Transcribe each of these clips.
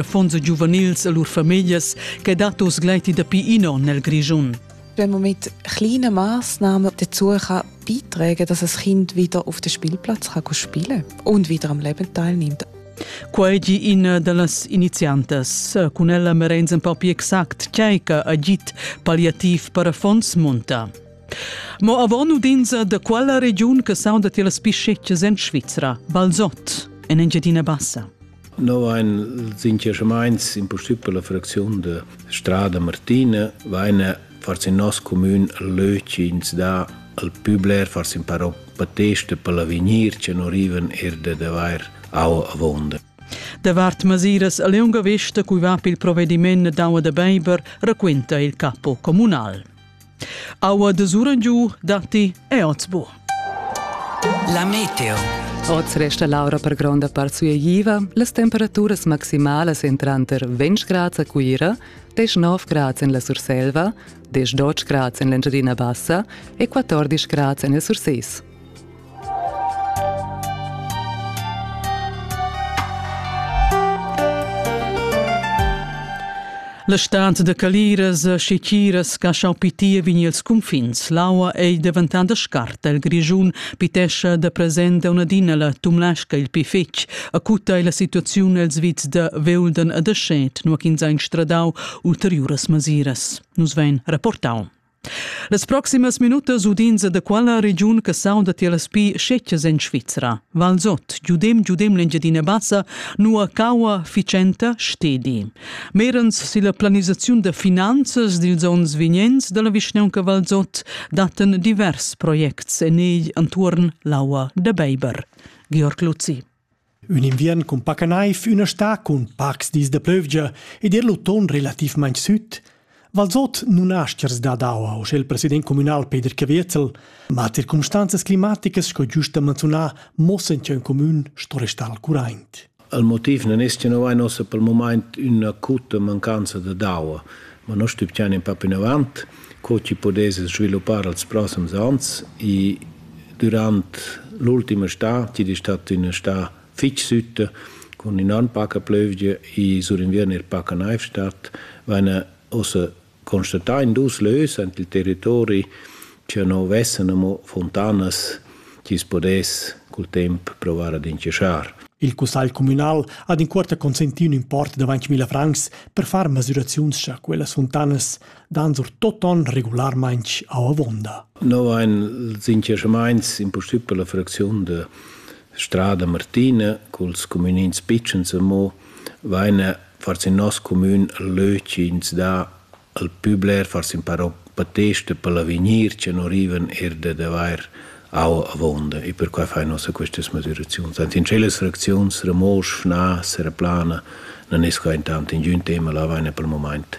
affons e giuvenils e lur famiglias che dat oz gleiti dapi in onn nel Grischun. Wenn man mit kleinen Maßnahmen dazu kann beitragen dass das Kind wieder auf den Spielplatz kann spielen und wieder am Leben teilnimmt. Quai gi ina da las iniziantas. Cun ella merenz en papi exact tgei che agit palliativ per affons munta. Mo avon udins da quella regiun che sauda ti las piscettas en Svizra, Balzot, en Engiadina Bassa. Noi ein sinceramaints in pussibel la fracziun de Strada Martina, vaina forse in nos comün leu chi ins dà al pü bler forse in parò pateste per l'avegnir che non riven er de d'avair au avonda. Davart masiras a lunga vista cui va pil provvediment d'aua da beiber raquenta il capo comunal. Aua de Surengiu datti e Otzbo. La meteo. Oz resta l'aura per gronda part sueigiva, las temperaturas maximalas en tranter 20 grads a Cuira, 19 grads en la Surselva, 18 grads en l'Engiadina Bassa e 14 grads en il Surses. La stanza da caliras e chichiras ch'ha schau pitir vegn els cunfins. L'aua ei deventanda scarta il Grischun, pitescha da present unadina la Tumlasca il pi fetg. Acuta ei la situaziun els vits da Veulden e da Schet, nua ch'ins ha instradau ulteriuras masiras. Nus vein rapportau. Las proximas minutas udins da quella regiun che saunda tier las pi scetgas en Svizra. Valsot, giudem giudem l'Engiadina Bassa, nua caua ficenta stedi. Merens silla planisaziun da finanzas dils onns vignents dalla vischnaunca Valsot datten divers projects en egl entuorn l'aua da Beiber. Georg Luzzi. Ün inviern cun paca naiv, üna stà cun pacs dis da plövgia ed ir l'uton relativmaing süt. Valzot nun ha aschers dad aua, uschè il president communal Peter Caviezel, ma circumstanzas climaticas sco giust da manzunar mossen cha ün comün sto restar al curaint. Il motiv non es cha no vain ossa pel mumaint üna acuta mancanza da aua, ma no stübgiain in pa plinavant. co chi pudess sviluppar als prossems ans i dürant l'ultima stà, chi'd es stat üna stà fich sütta cun innan paca plövgia e surinviern eir paca naiv stat, vaina ussa constatà in dus lös aint il territori cha no vessan amo funtanas chi's pudess cul temp provar ad inchaschar. Il cussagl cumünal ha d'incuorta consentì ün import da ventg mila francs per far masüraziuns cha quellas funtanas dan sur toton regularmaintg a avonda. No ein sinceramaints in possibel la fracziun de Strada Martina culs communins pitschens mo vaine fars in nos commun leuci ins da al publer fars in paro pateste per l'avegnir che non riven er de daver Au avonda e perquai fai nossa questas moderaziuns. Ant in celas reacziuns remosch, na, sereplana, non es quaint tant in giun tema la vaina pel moment.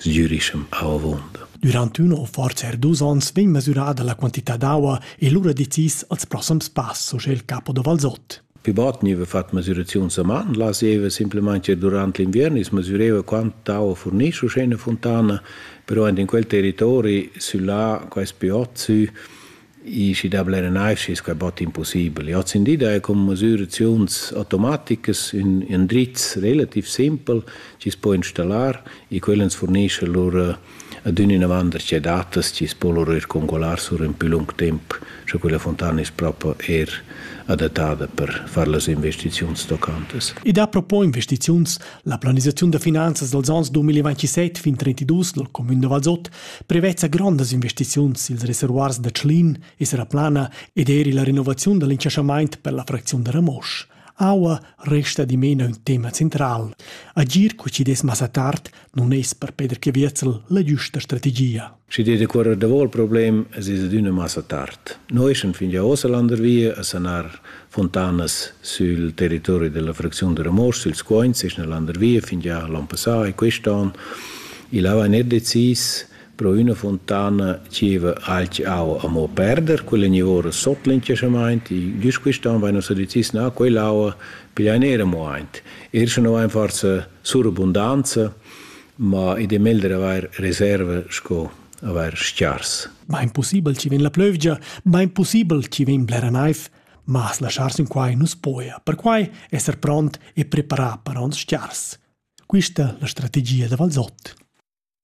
Sgürischem au avonda. Durant üna o forza er dus ons vegn mesurada la quantità d'aua e lura decis als prossams pass, so il capo da Valsot. Pi bot gniva fat masüraziuns a man, laseva simplamaing ir durant l'inviern, i's masüreva quant tau furnisce usché üna funtana, però aint in quel territori süllà, quais pi ot sü, i schi da blera naiv schi es quai bot impussibel. Hoz in di daja cun masüraziuns automaticas ün ün drizz relativ simpel chi's po installar e quel ans furnischa lur adüna inavant da che datas chi's po lura ir congualar sur ün pü lung temp, sco quella funtana es propa eir adattada per far las investiziuns tocantas. I dà propo investiziuns. La planisaziun da finanzas dals ans 2027 fin 2032 dal cumün da Valsot prevezza grondas investiziuns i'ls reservoirs da Tschlin e Seraplana ed eir illa renovaziun da l'incasamaint per la fracziun da Ramosch. Aua resta dimena ün tema central. Agir co chi dess massa tard non es per Peter Caviezel la giusta strategia. Schi dir decuorrer davò il problem es es adüna massa tard. Noi sun fin già ossa landervia a sanar fontanas sul territori della fracziun de Ramos, sul Scoins, es na landervia fin già l'an passà e quest'an. Il ava net decis Pro üna fontana zieva alch aua amo perder, quella gnivora sot l'incesamaint, i güst quist'an vaina sudizis na quell'aua, pigliain eir amo aint. Eir sche no vain forsa surabundanza, ma id è meglder avair reserva sco avair s-chars. Bain pussibel chi vegn la plövgia, bain pussibel chi vegn blera naiv, ma as laschar sün quai nu's poja, perquai esser pront e preparà per ons s-chars. Quista la strategia da Valsot.